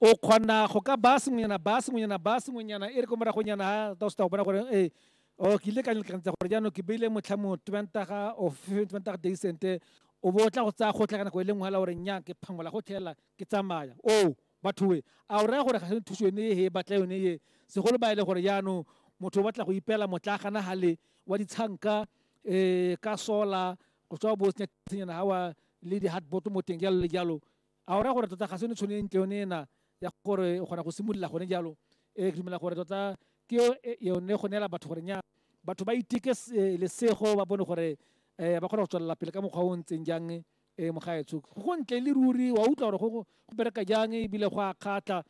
O kgona go ka baya sengwenyana, baya sengwenyana, baya sengwenyana, e re ko moragonyana ha ta o se ta go bona gore e o ke ile ka lekantsa gore jaanong ke beile motlha mo twentaga o twentaga deisente o bo o tla go tsaya gotlhe ka nako e le nngwe hela gore nnyang ke phangola go tlhelela ke tsamaya o bathoe a o raya gore ga se thuso yone e e batla yone e segolo ba e le gore jaanong motho o batla go ipela motla gana hale wa ditshanka um ka sola go tswa bo senyana gawa le di-hardbot mo teng jalo le jalo A o raya gore tota ga se yone tšhono e ntle yone ena ya gore o kgona go simolola gone jalo? Ee, ke dumela gore tota ke e, yone go neela batho gore nya batho ba iteke lesego ba bone gore um ba kgona go tswelela pele ka mokgwa o o ntseng jang um mogaetsho go ntle le ruri wa utlwa gore go bereka jang ebile go a kgatlha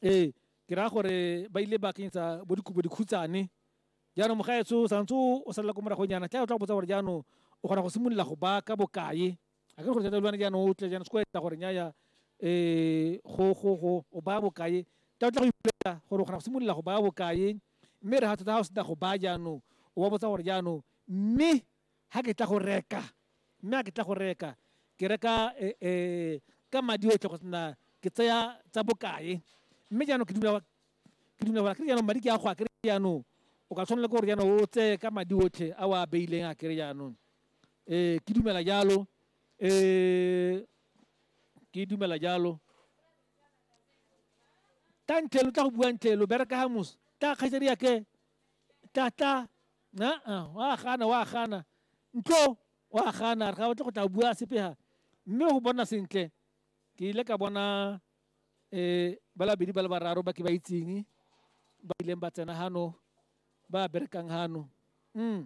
ee ke raya gore ba ile ba kenyetsa bo dikobo dikhutshane jaanong mogaetsho o santse o salela ko moragonyana tla o tla go botsa gore jaanong o kgona go simolola go baka bokae a ke gore thata lwane jaanong o tle jaanong se ko etsa gore nyaya um go go go o baya bokae ka o tla go ipolela gore o kgona go simolola go baya bokae mme re ga thata ga o sena go baya jaanong o ba botsa gore jaanong mme ga ke tla go reka mme ga ke tla go reka ke reka um ka madi otlhe go sena ke tseya tsa bokae mme jaanong ke dumela ke dumela gore a kere jaanong madi ke a go a kere jaanong o ka tshwanela ke gore jaanong o tseye ka madi otlhe a o a beileng a kere jaanong ee ke dumela jalo um ke dumela jalo tla ntle lo tla go bua ntle lo bereka ga moso tla kgaitsadi yake tla tla aa wa gana wa gana ntlo wa gana re ga batle go tla bua sepega mme go bona sentle ke ile ka bona um ba labedi ba le bararo ba ke ba itseng ba ileng ba tsena gano ba berekang gano um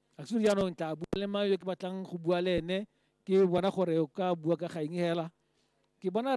Actually jaanong tla bua le mang yo ke batlang go bua le ene ke bona gore o ka bua ka ga eng hela ke bona